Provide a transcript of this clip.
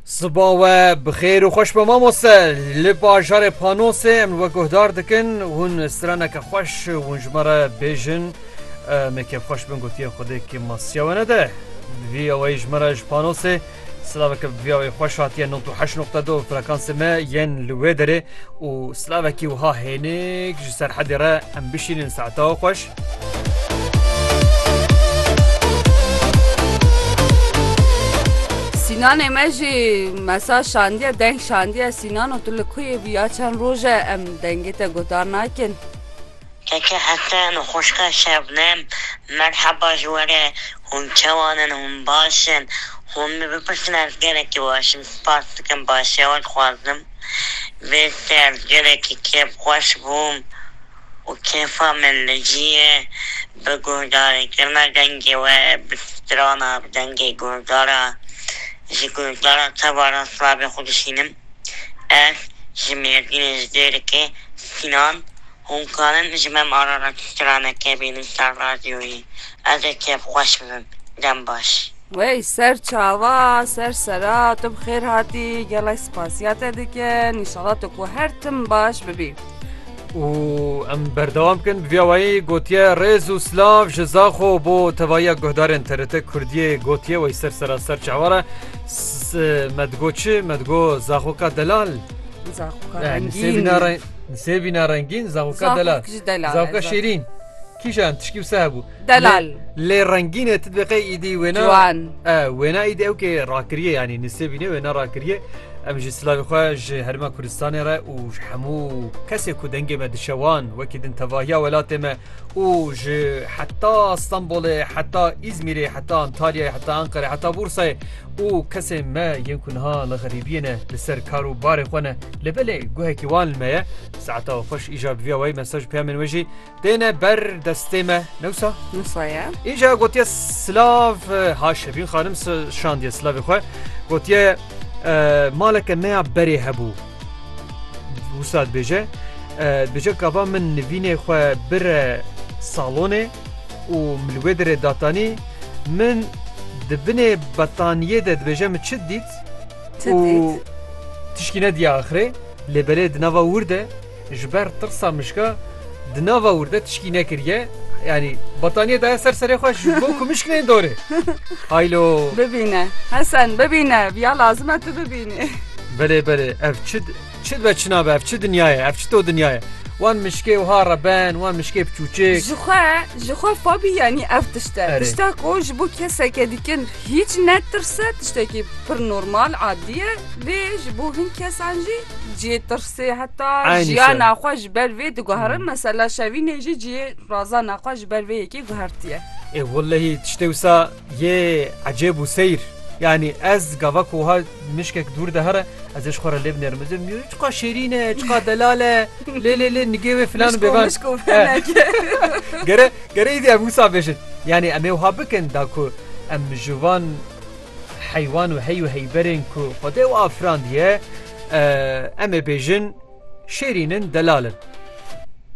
Siba we bixêr û xweş be mamoste li bajarê panosê em we guhdar dikin hûn straneke xweş hûn ji me re bêjin me kevxweş bin gotiye xwedê ki masiya we nede vî eweyî ji me re ji panosê Slaveke vî eweyî xweş hatiye 98.2 frekansê me yên li wê derê û slavekî wiha hênik ji serhedê re em bişînin saeta xweş Sînanê me jî mesaj şandiye deng şandiye Sînano tu li ku yê bû ya çend roj e em dengê te guhdar nakin. Keke Hesen û xwişka Şebnem merheba ji we re, hûn çawan in, hûn baş in? Hûn min bipirsîn ez gelekî baş im, spas dikim başiya we dixwazim vê ser gelekî kêfxweş bûm. û kêfa min li ciyê bi guhdarê kirina dengê we bi strana bi dengê guhdara ji guhdara tevara slavê xwe dişînim. Ez ji Mêrdînê ji dêrikê Sînan hûn karin ji me em arara tu straneke bînin ser radyoyê ez ê kêfxweş bibim. Dem baş. Wey ser çava ser sera tu bi xêr hatî gelek spasiya te dikin înşala tu ku her tim baş bibî. û em berdewam bikin bi vîya wayî gotiye rêz û silav ji Zaxo bo tevahiya guhdarên TRT Kurdiyê gotiye wey ser sera ser çava re me digo çi me digo zaxoka delal Zaxoka Eh, nisê rengîn. bîna re- nisê bîna rengîn zaxoka delal Zaxok ji delal. zaxoka şêrîn kîjan tişkî wisa hebû Delal. Lê rengîne tu diqê îdî wêna Ciwan. E wêna îdî ew kê rakiriye yanî nisêbîne wêna rakiriye. Em ji silavê xwe ji herêma Kurdistanê re û ji hemû kesê ku dengê me dişe wan wekî din tevahiya welatê me û ji heta Stenbolê heta Îzmîrê heta Antalyayê heta Enqerê heta Bûrsayê û kesê me yên ku niha li xerîbiyê ne li ser kar û barê xwe ne li belê guhekî wan li me ye. Saeta xweş îja bi vîya wayî mesaj peyamên wê jî Têne ber destê me newsa? Newsa ye. Înca gotiye silav ha Şevîn xanim şandiye silavê xwe gotiye maleke me ya berê hebû wisa dibêje dibêje kava min nivînê xwe bire salonê û min li wê derê datanî min di binê betaniyê de dibêje min çi dît û tişkî nediya axirê lê belê di nava wir de Ji ber tirsa mişka di nava wir de tişkî nekiriye. Yanî bataniyê daye ser serê xwe ji bo ku mişk neyên dorê. Haylo. Bibîne. Hesen bibîne. Viya lazim e tu bibînî. Belê belê ev çi çi dibe çi nabe ev çi dinya ye ev çi to dinya ye. Wan mişkê wiha re ben wan mişkê bi çûçik. Ji xwe ji xwe fabî yanî ev tişt e. Tişta ku ji bo keseke dikin hîç netirse tiştekî pir normal adî ye lê ji bo hin kesan jî cihê tirs. Sê heta Aynî jiyana şev. xwe ji ber vê diguherin mesela şevînê jî cihê razana xwe ji ber vê yekê guhertiye. Ê wellehî tiştê wisa yê ecêb û seyr. Yanî ez gava ku wiha mişkek dûr de here ez ê ji xwe re lê binêrim. Ez ê binim çiqa şêrîn e, çiqa delal e, lê lê lê nigê wê filan û Mişko bêvan. mişko Eh. feneke. Gere gere îdî em wisa bêjin. Yanî em ê wiha bikin da ku em ji van heywan û hey û heyberên ku Xwedê û afirandiye, em ê bêjin şêrîn in, delal in.